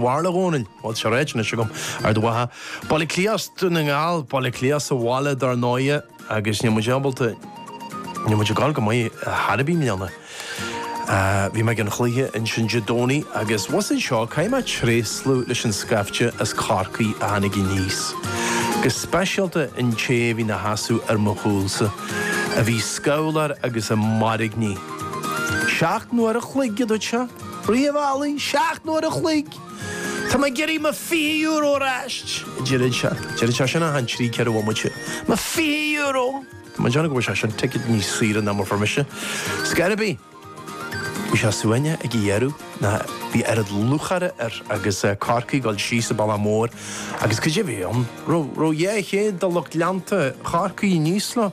Bharúil, a Dhónaill, bhuel, seo ráite anois agam ar do mhaithe. Baile Átha Cliath Dún na nGall, Baile Átha Cliath sa bhaile dar ndóighe agus níl muid ábalta, níl muid ag gabháil go maith ar chor ar bith i mbliana. Bhí mé ag an chluiche ansin Dé Domhnaigh agus abhus anseo, caithfidh mé tréaslú leis an scaifte as Corcaigh a tháinig aníos, go speisialta an té a bhí ina sheasamh ar mo chúlsa, a bhí scabhláir agus ag mairgní. Seacht n-uair an chloig, a dúirt sé. Draibheáil, seacht n-uair an chloig. Tá mé ag iarraidh mo fiche euro ar ais, a deireann sé. Deireann sé sin achan trí, ceithre bhomaite. Mo fiche euro! Tá mé ag déanamh go bhfuair seisean ticéad níos saoire ná mar a fuair mise. Ar scor ar bith! Bhí sé suaimhneach ag an deireadh ná bhí oiread lúcháire air agus Corcaigh ag dul síos an bealach mór agus cad é bhí ann? An raibh dhá chéad de lucht leanta Chorcaí aníos leo.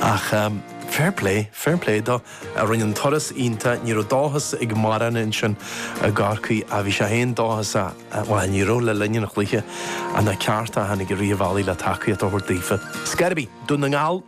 Ach fair play, fair play dó, a rinne an turas iontach, ní raibh dóchas ag mórán ansin i gCorcaigh ach bhí sé fhéin dóchasach, bhuel, ní raibh le linn an chluiche ach na céadta a tháinig i rith an bhealaigh le tacaíocht a thabhairt daofa. Ar scor ar bith, Dún na nGall,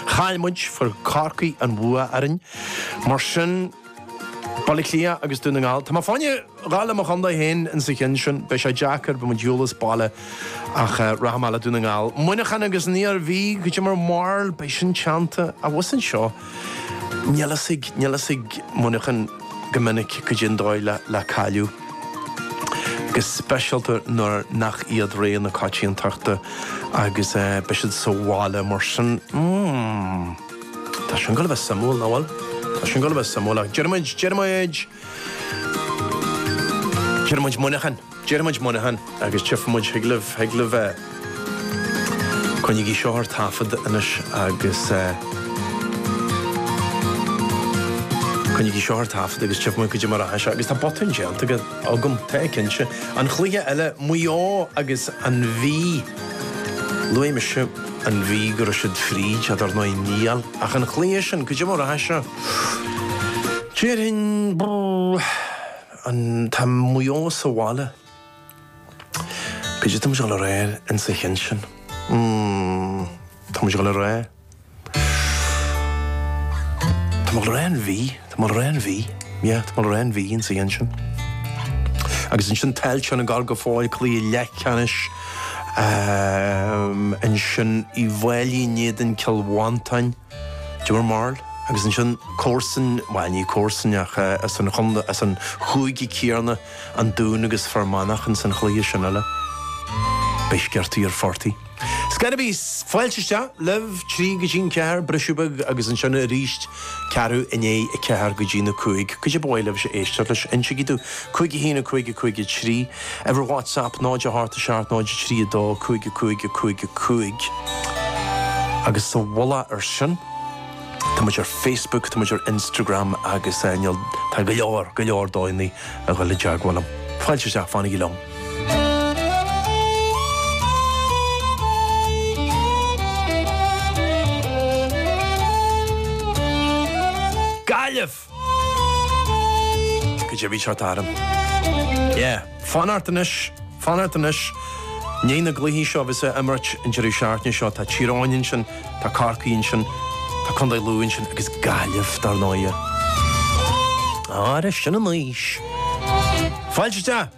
chaill muid fuair Corcaigh an bhua orainn, mar sin Baile Átha Cliath agus Dún na nGall. Tá mé féin ag gabháil le mo chontae féin insa chionn sin. Beidh sé deacair, beidh muid ar shiúl as baile ach rachaidh mé le Dún na nGall. Muineachán agus an Iarmhí, cad é mo bharúil, beidh sin teannta. Abhus anseo, níl a fhios ag, níl a fhios ag Muineachán go minic, cad é an dóigh le, le cailleadh. Go speisialta nuair nach iad rogha na coitiantachta agus beidh siad sa bhaile mar sin. Tá sin ag gabháil a bheith suimiúil, nach bhfuil? Tá sin ag gabháil a bheith suimiúil ach deir muid, deir muid, deir muid Muineachán, deir muid Muineachán agus tífidh muid, thig libh, thig libh eh. Coinnigí seo ar taifead anois agus eh, coinnigí seo ar taifead agus tífidh muid cad é mar atá sé agus tá botún déanta agam, tá cinnte. An chluiche eile, Maigh Eo agus an Mhí. Luaigh mise an Mhí go raibh siad fríd, ach dar ndóigh níl, ach an chluiche sin, cad é mar a rachaidh seo, déarfainn, an, tá Maigh Eo sa bhaile, cad é tá muid dul a rá insa chionn sin, mm, tá muid dul a rá. Tá mé ag dul a rá an Mhí, tá mé ag dul a rá an Mhí, yeah, tá mé ag dul a rá an Mhí insa chionn sin. Agus ansin Tailteann ag gabháil go fóill cluiche leathcheannais ansin Uíbh Fhailí in éadan Cill Mhantáin, cad é mo bharúil, agus ansin comharsan, bhuel ní comharsan ach as an chontae, as an chúige céanna, an Dún agus Fear Manach ins an chluiche sin eile. Beidh scirtí ar phortaigh. Scarabees, Fáilte isteach libh, trí go dtí'n ceathair, briseadh beag agus ansin aríst, ceathrú i ndiaidh a ceathair go dtí'n a cúig, caidé ba mhaith libhse a éisteacht leis, insigí domh, cúig a haon, a cúig, a cúig a trí, uimhir WhatsApp, 0 a hocht 7 0 3 2 5 5 5 5. Agus sa mhullach ar sin, tá muid ar Facebook, tá muid ar Instagram agus níl, tá go leor, go leor daoine ag dul i dteagmháil liom. Fáilte isteach, fanaigí liom. Gaillimh! Go deimhin seo t'ainm. Yeah. Fan ort anois, fan ort anois. I ndiaidh na gcluichí seo a bheas á imirt an deireadh seachtaine seo. Tá Tír Eoghain ansin. Tá Corcaigh ansin, tá Contae Lú ansin agus Gaillimh, dar ndóighe. Ara, sin anois. Fáilte!